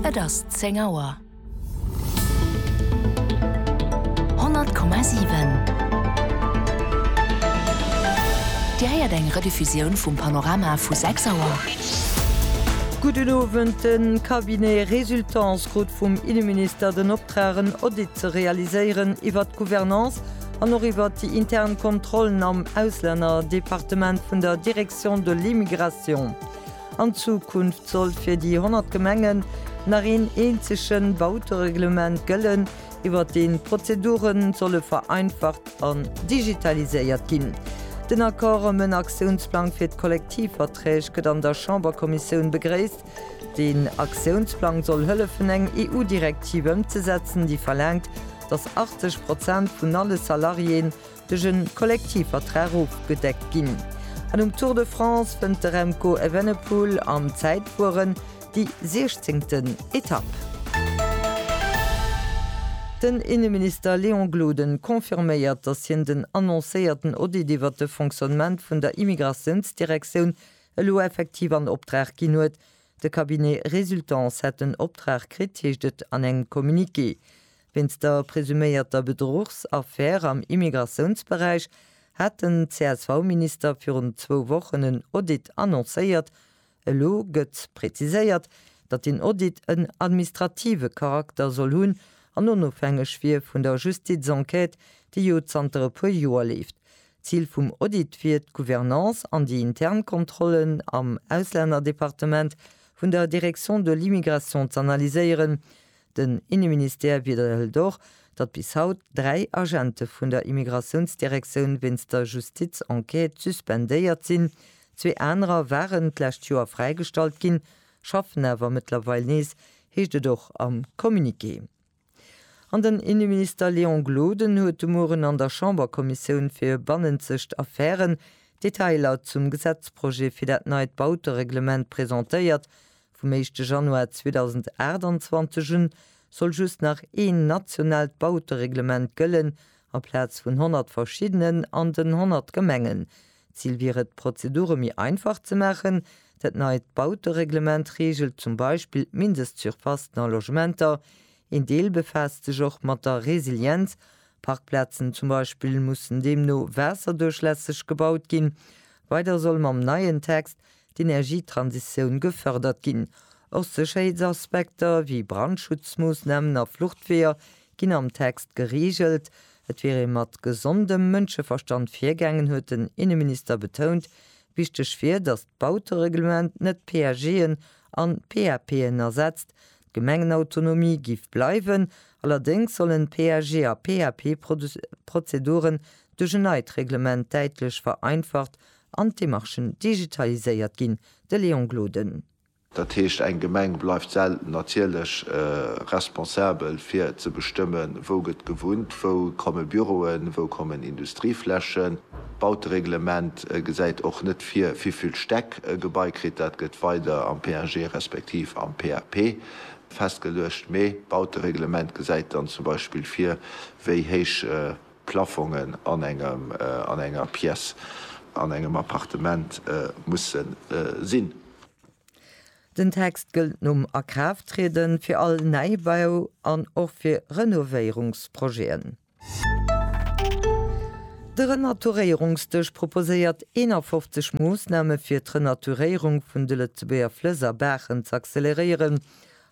Et ass 10 Auer. 100,7 Dir héiert eng Rediffusioun vum Panorama vu 6 Auer. Gudden Owend. De Cabinet Résultance krut vum Inneminister den Optrag en Audit ze realiséieren iwwert d'Gouvernance an och iwwert déi intern Kontrollen am Auslännerdepartement vun der Direction de l'Immigration. An Zukunft soll fir déi 100 Gemengen nach een eenzege Bautereglement gëllen, iwwert deen d'Prozedure solle vereinfacht an digitaliséiert ginn. Den Accord ëm en Aktiounsplang fir d'Kollektivverträg gëtt an der Chamberkommissioun begréisst. Deen Aktiounsplang soll hëllefen eng EU-Direktiv ëmzesetzen, déi verlaangt, datt 80 Prozent vun alle Salariéen duerch e Kollektivvertrag ofgedeckt ginn. An um Tour de France fënnt de Remco Evenepoel am Zäitfueren déi 16. Etapp. Den Inneminister Léon Gloden confirméiert, datt hien den annoncéierten Audit iwwert de Fonctionnement vun der Immigratiounsdirektioun elo effektiv an Optrag ginn huet. De Cabinet Resultance hätt den Optrag kritt, heescht et an engem Communiqué. Wéinst der presuméierter Bedruchsaffär am Immigratiounsberäich hat den CSV-Minister virun zwou Wochen en Audit annoncéiert. Elo gëtt präziséiert, datt deen Audit en administrative Charakter soll hunn an onofhängeg wier vun der Justizenquête, déi jo zanter e puer Joer leeft. Zil vum Audit wier, d'Gouvernance an déi intern Kontrollen am Auslännerdepartement vun der Direction de l'immigration z'analyséieren. Den Inneministère widderhëlt och, datt bis haut dräi Agente vun der Immigratiounsdirektioun wéinst der Justizenquête suspendéiert sinn. Zwee anerer waren d'lescht Joer fräigestallt ginn, schaffen awer mëttlerweil nees, heescht et och am Communiqué. An den Inneminister Léon Gloden huet de Mueren an der Chamberkommissioun fir bannenzegt Affären d'Detailer zum Gesetzprojet fir dat neit Bautereglement presentéiert, Vum éischte Januar 2028 un soll just nach een nationaalt Bautereglement gëllen, aplaz vun 100 verschiddenen an den 100 Gemengen. D'Zil wier et, d'Prozedure méi einfach ze maachen. Dat neit Bautereglement reegelt zum Beispill d'Mindestsurfacen a Logementer. Een Deel befaasst sech och mat der Resilienz. Parkplazen zum Beispill mussen deemno waasserduerchlässeg gebaut ginn. Weider soll mam neien Text d'Energietransitioun gefërdert ginn. Och Sécherheetsaspekter wéi Brandschutzmoossnamen a Fluchtweeër ginn am Text gereegelt. Et wier ee mat gesondem Mënscheverstand virgaangen, huet den Inneminister betount. Wichteg wier, datt d'Bautereglement net PAGen an PAPen ersetzt. D'Gemengenautonomie géif bleiwen, allerdéngs sollen PAG a PAP-Prozeduren duerch en neit Reglement däitlech vereinfacht an d'Demarchen digitaliséiert ginn, de Léon Gloden. Dat heescht, eng Gemeng bleift selten natierlech responsabel fir ze bestëmmen, wou gëtt gewunnt, wou komme Büroen, wou kommen Industrieflächen. D'Bautereglement gesäit och net vir, wivill Stäck e Gebai kritt. Dat gëtt weider am PAG respektiv am PAP festgeluecht. Mee d'Bautereglement gesäit dann zum Beispill vir, wéi héich Plafongen an engem, an enger Pièce, an engem Appartement musse sinn. Den Text gëllt nom Akraafttrieden fir all Neibau an och fir Renovéierungsprojeten. De Renaturéierungsdësch proposéiert 51 Moossname fir d'Renaturéierung vun de Lëtzebuerger Flëss a Baachen z'acceleréieren.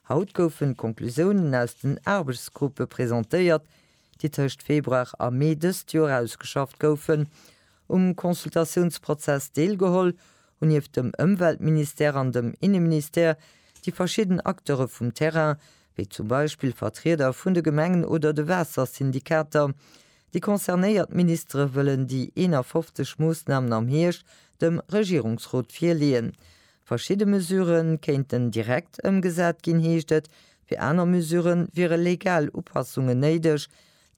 Haut goufen d'Conclusiounen aus den Aarbechtsgruppe presentéiert, déi tëscht Februar a Mee dëst Joer ausgeschafft goufen, um Consultatiounsprozess deelgeholl, hunn nieft dem Ëmweltministère an dem Inneministère déi verschidden Acteure vum Terrain, wéi zum Beispill Vertrieder vun de Gemengen oder de Waassersyndikater, déi concernéiert Ministere wëllen déi 51 Moossnamen am Hierscht dem Regierungsrot virleeën. Verschidde Mesurë kéinten direkt ëmgesat ginn, heescht et, fir aner Mesurë wiere legal Upassungen néideg.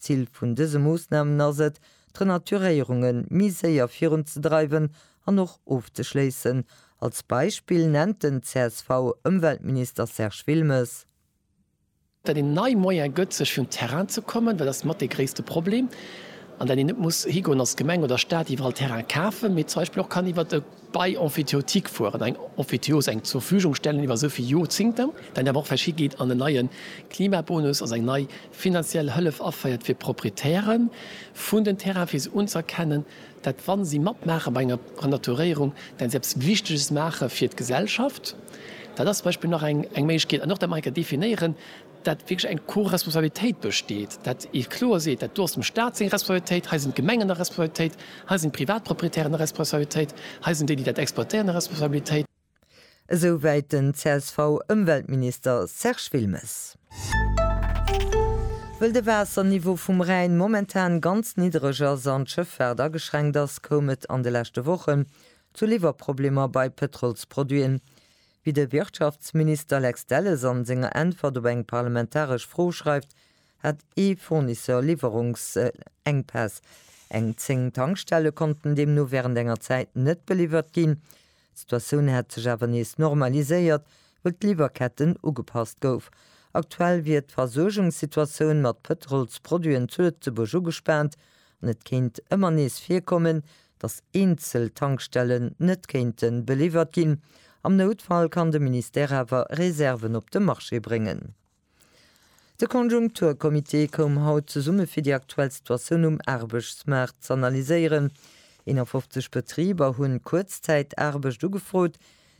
D'Zil vun dëse Moossnamen ass et, d'Renaturéierunge méi séier virunzedreiwen an och ofzeschléissen. Als Beispill nennt den CSV-Ëmweltminister Serge Wilmes. dat een nei Moyen gëtt sech vun Terrain ze kommen, dat ass mat dee gréisste Problem, an dat een net muss higoen als Gemeng oder Staat iwwerall Terrain kafen, mee zum Beispill och kann iwwert e Bail emphytéotique fueren, eng Emphytéose, eng zur Verfügung stellen iwwer esou vill Jorzingter, dat een awer och vläicht higeet an en neie Klimabonus, also eng nei finanziell Hëllef aféiert fir d'Proprietäre vun den Terrainen, fir se unzëerkennen, dat wa si matmaache bei enger Renaturéierung, dat si eppes Wichteges maache fir d'Gesellschaft, dat ass zum Beispill nach eng Méiglechkeet. An och, datt mer enker definéieren, datt wierklech eng Co-Responsabilitéit besteet, datt ee kloer seet, dat do ass dem Stat seng Responsabilitéit, hei sinn d'Gemengen a Responsabilitéit, hei sinn d'Privatproprietären a Responsabilitéit, hei sinn déi, déi dat exploitéieren, a Responsabilitéit. Esouwäit den CSV-Ëmweltminister Serge Wilmes. Wëll de Waasserniveau vum Rhäin momentan ganz niddereg ass an d'Schëffaart ageschränkt ass, koum et an de leschte Wochen zu Liwwerproblemer bei Pëtrolsproduiten. Wéi de Wirtschaftsminister Lex Delles an senger Äntwert op eng parlamentaresch Fro schreift, hat ee Fournisseur Liwwerungsengpäss. Eng 10 Tankstelle konnten deemno wärend enger Zäit net beliwwert ginn. D'Situatioun hätt sech awer nees normaliséiert, wëll d'Liwwerketten ugepasst gouf. Aktuell wier d'Versuergungssituatioun mat Pëtrolsproduiten zu Lëtzebuerg ugespaant an et kéint ëmmer nees virkommen, datt eenzel Tankstellen net kéinte beliwwert ginn. Am Noutfall kann de Ministère awer Reserven op de Marché bréngen. De Konjunkturcomité koum haut zesumme fir déi aktuell Situatioun um Aarbechtsmaart z'analyséieren. 51 Betriber hunn Kuerzzäitaarbecht ugefrot.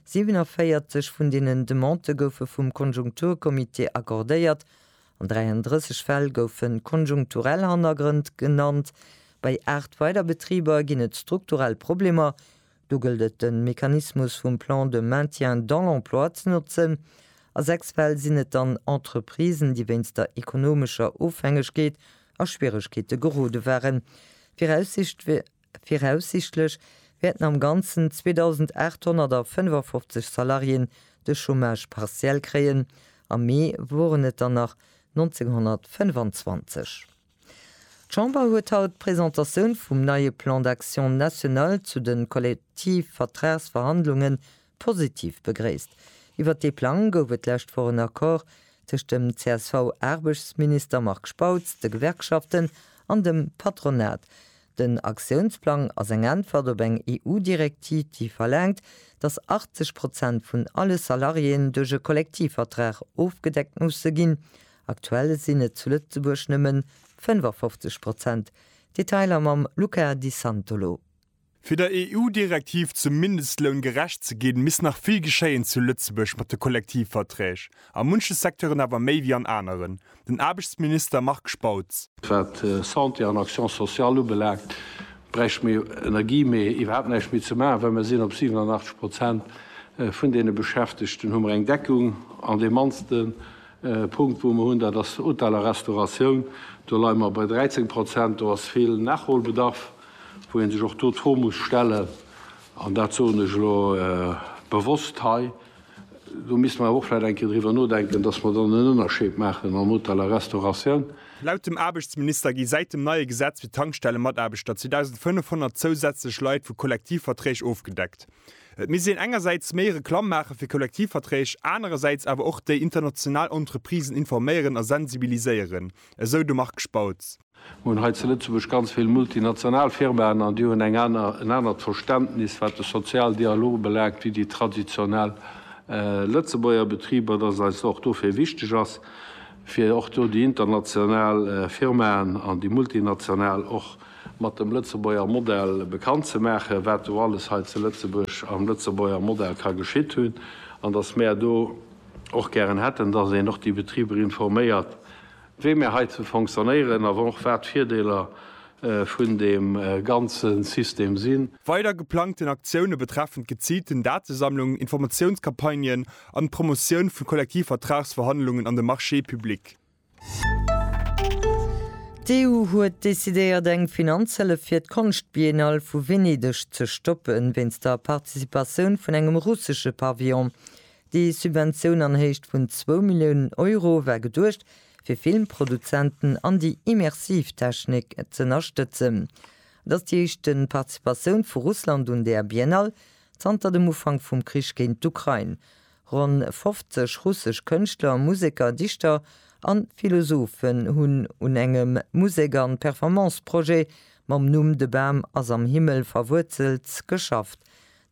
47 vun deenen Demandë goufe vum Konjunkturcomité accordéiert. An 33 Fäll goufe konjunkturell Hannergrënn genannt. Bei 8 weider Betriber ginn et strukturell Problemer, Do gëllt et de Mechanismus vum Plan de maintien dans l'emploi ze notzen. A sechs Fäll sinn et dann Entreprisen, déi wéinst der ekonomescher Ofhängegkeet a Schwieregkeete gerode waren. Viraussichtlech wäerten am Ganzen 2.855 Salariéen de Chômage partiel kréien, am Mee woren et der nach 1.925. D'Chamber huet haut d'Presentatioun vum neie Plan d'action national zu de Kollektivvertragsverhandlunge positiv begréisst. Iwwert dee Plang gouf et d'lescht Woch en Accord tëscht dem CSV-Aarbechtsminister Marc Spautz, de Gewerkschaften an dem Patronat. Den Aktiounsplang ass eng Äntwert op eng EU-Direktiv, déi verlaangt, datt 80 Prozent vun alle Salariéen duerch e Kollektivvertrag ofgedeckt musse ginn Aktuell sinn et zu Lëtzebuerg nëmmen 55 Prozent. Detailer mam Luca Di Santolo. Fir der EU-Direktiv zum Mindestloun gerecht ze ginn, misst nach vill geschéien zu Lëtzebuerg mat de Kollektivverträg, a munche Secteuren awer méi wéi an aneren. Den Aarbechtsminister Marc Spautz. Wat Santé an Action sociale ubelaangt, bräichte mir Energie méi iwwerhaapt näischt méi ze maachen, well mir sinn op 87 Prozent vun deene Beschäftegten, hu mer eng Deckung an de mannste E Punkt, wou mer hunn, dat ass Hotel a Restauratioun. Do leie mer bei 13 Prozent. Do ass vill Nachholbedarf, wou ee sech och do d'Fro muss stellen, an dat soen ech elo bewosst hei, do misste mer awer och vläicht eng Kéier driwwer nodenken, dass mer dann en Ënnerscheed maachen am Hotel a Restauratioun. Laut dem Aarbechtsminister gi säit dem neie Gesetz fir d'Tankstellemataarbechter 2.500 zousätzlech Leit vu Kollektivverträg ofgedeckt. Et misst een engersäits méi Reklamm maache fir Kollektivverträg, anerersäits awer och déi international Entreprisen informéieren a sensibiliséieren, esou de Marc Spautz. Mir hunn hei zu Lëtzebuerg ganz vill multinational Firmaen an déi hunn eng aner, en anert Verständnis, wat de Sozialdialog ubelaangt, wéi déi traditionell Lëtzebuerger Betriber, dass eis och dofir wichteg ass, fir och do déi international Firmaen an déi multinational och, mat dem Lëtzebuerger Modell bekannt ze maachen, wat do alles hei zu Lëtzebuerg am Lëtzebuerger Modell ka geschitt hunn, an dass mär do och gären hätten, dass een och déi Betriber informéiert, wéi mär hei zu fonctionnéieren a och wat d'Virdeeler vun deem ganze System sinn. Weider geplangten Aktioune betreffen d'geziilten Datesammlung, Informatiounscampagnen an d'Promotioun vu Kollektivvertragsverhandlungen an de Marché public. D'EU huet decidéiert eng Finanzhëllef fir d'Konschtbiennale vu Venedeg ze stoppen, wéinst der Participatioun vun engem russesche Pavillon. Déi Subventioun an Héicht vun zwou Milliounen Euro war geduecht fir Filmproduzenten an déi immersiv Technik z'ënnerstëtzen. Et ass déi éischte Participatioun vu Russland un där Biennale zanter dem Ufank vum Krich géint d'Ukrain. Ronn 50 russesch Kënschtler, Museker, Dichter an Philosophen hunn un engem Musek an Performance Projet mam Numm De Bam ass am Himmel verwuerzelt geschafft.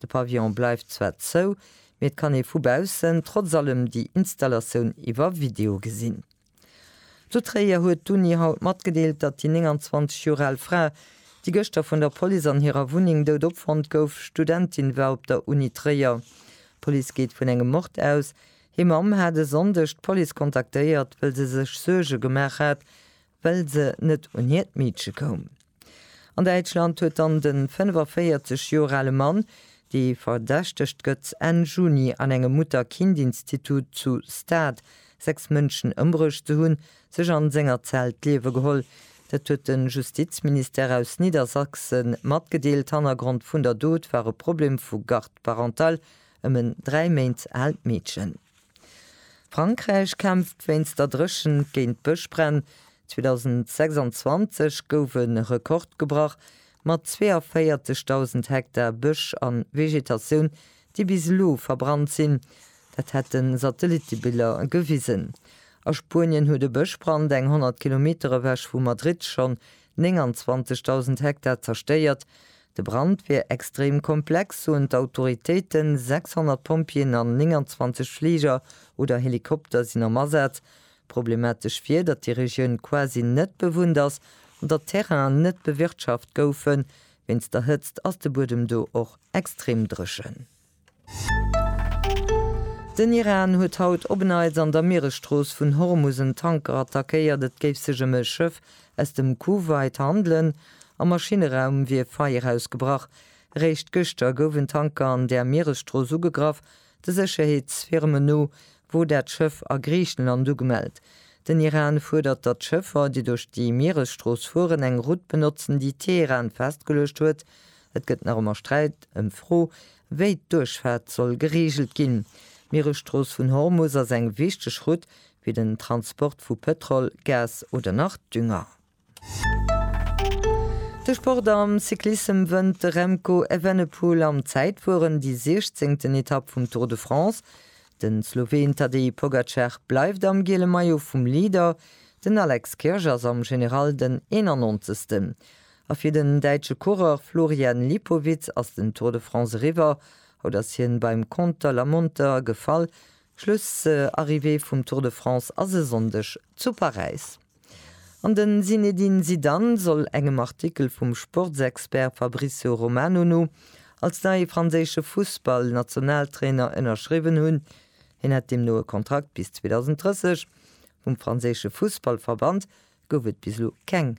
De Pavillon bleift zwar zou, mee et kann ee vu baussen trotz allem déi Installatioun iwwer Video gesinn. Zu Tréier huet d'Uni haut matgedeelt, datt déi 29 Joer al Fra, déi gëschter vun der Police an hirer Wunneng dout opfonnt gouf, Studentin war op der Uni Tréier. D'Police geet vun engem Mord aus. Hir Mamm hat e Sonndeg d'Police kontaktéiert, wëll se sech Suerge gemaach hat, well se net un hiert Meedche koum. An Däitschland huet dann de 45 Joer ale Mann, dee verdächtegt gëtt, Enn Juni an engem Mutter-Kind-Institut zu Stade sechs Mënschen ëmbruecht ze hunn, sech an senger Zell d'Liewe geholl. Dat huet de Justizministère aus Niedersachse matgedeelt. Hannergrond vun der Dot war e Problem vu Garde parentale ëm en dräi Méint aalt Meedchen. Frankräich kämpft wéinst der Dréchent géint d'Bëschbränn, 2026 gouf e Rekord gebrach mat 42.000 Hektar Bësch a Vegetatioun, déi bis elo verbrannt sinn. Dat hätte Satellittebiller gewisen. A Spuenien huet e Bëschbrand eng 100 Kilometer ewech vu Madrid schonn 29.000 Hektar zerstéiert. De Brand wier extrem komplex, soen d'Autoritéiten. 600 Pompjeeën an 29 Fliger oder Helikopter sinn am Asaz. Problematesch wier, datt déi Regioun quasi net bewunnt ass an datt d'Terrainen net bewirtschaft goufen. Wéinst der Hëtzt ass de Buedem do och extrem dréchen. Den Iran huet haut op en Neits an der Mieresstrooss vun Hormus en Tanker attackéiert. Et géif sech ëm e Schëff aus dem Kuwait handelen. Am Maschineraum wier Feier ausgebrach. Eréischt gëschter gouf en Tanker an där Mieresstrooss ugegraff. De Sécherheetsfirmen no wor dat Schëff a Griichenland ugemellt. Den Iran fuerdert, datt d'Schëffer, déi duerch déi Mieresstrooss fueren, eng Route benotzen, déi Teheran festgeluecht huet, Et gëtt nach ëmmer Sträit ëm d'Fro, wéi d'Duerchfaart soll gereegelt ginn. D'Mieresstrooss vun Hormus ass eng wichteg Route fir den Transport vu Pëtrol, Gas oder nach Dünger. De Sport am Cyclissem wënnt de Remco Evenepoel am Zäitfueren déi siechzéngten Etapp vum Tour de France. Den Sloween Tadej Pogacar bleift am giele Maillot vum Leader, den Alex Kirch ass am General den eenanonzegsten. A fir den däitsche Coureur Florian Lipowitz ass den Tour de France eriwwer. Haut ass hien beim Conter la Monter gefall. Schlussarrivée vum Tour de France ass e Sonndeg zu Paräis. An den Zinedine Zidane soll engem Artikel vum Sportsexpert Fabrizio Romano no als neie franséische Fussballnationaltrainer ënnerschriwwen hunn. Hien hätt deemno e Kontrakt bis 2030. Vum franséische Fussballverband gouf et bis elo keng